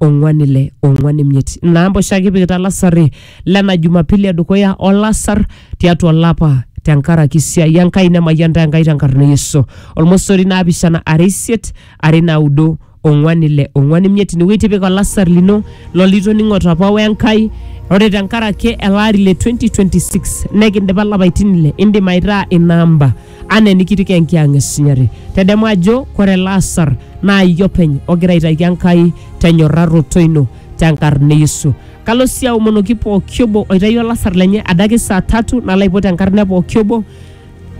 ong'wan ile ong'wan imiet namba oshi ake ipikita lasari lena jumapili edukuya olasar tiatua olapa tenkaraki siai enkai nemayian ntae enkai tenkarna e yesu olmosori naapishana are isiet are naudo ong'wan ile ong'wan imiet inewueji tipika olasar lino lolitoning'ote apa wenkai ore tenkaraki ele ari le 2026 nekindipa lapaitin ile indim aitaa ina amba anaa enikitiki enkiang esinyati. Tedemu ajo kore ele asar naa iyie openy ogira aitaki Enkai tenyorraroto ino tenkarna e Yesu. Kalo sii aomonoki pooki obo oitayio olasar lenye adake saa tatu nalo aipot enkarna e pooki obo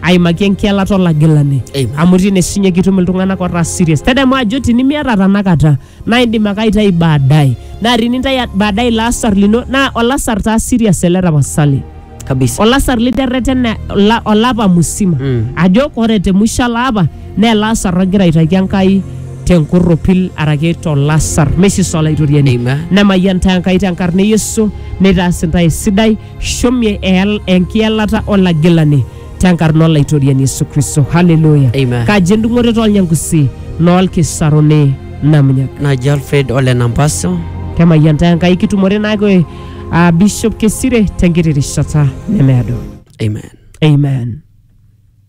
aimaki enkielata olagilani Amen. amu tine sinye kitum iltung'anak otaa serious. Tedemu ajo tinimiata tanakata naa indim ake aitayu baadaye naa tinintayu baadaye ilo asar lino naa olasar taa serious ele tapasali kabisa olasar literretene ola- olapa musima Mm. ajo ore te musho ele apa naa ele asar ogira aitaki enkai tenkorropil araki tolasar mesisa olaitoriani Amen. nemayian taa enkai tenkarna e yesu neitaas intae esidai shomie eyal- enkiyalata olagilani tenkarna olaitoriani yesu kristo haleluya Amen. kaji endung'oto tolnyangusi noolkisaruni namunyak naji alfred ole nampaso kemayian taa enkai kitumore naake uh, bishop kesire tenkiti rishata nemeado amen amen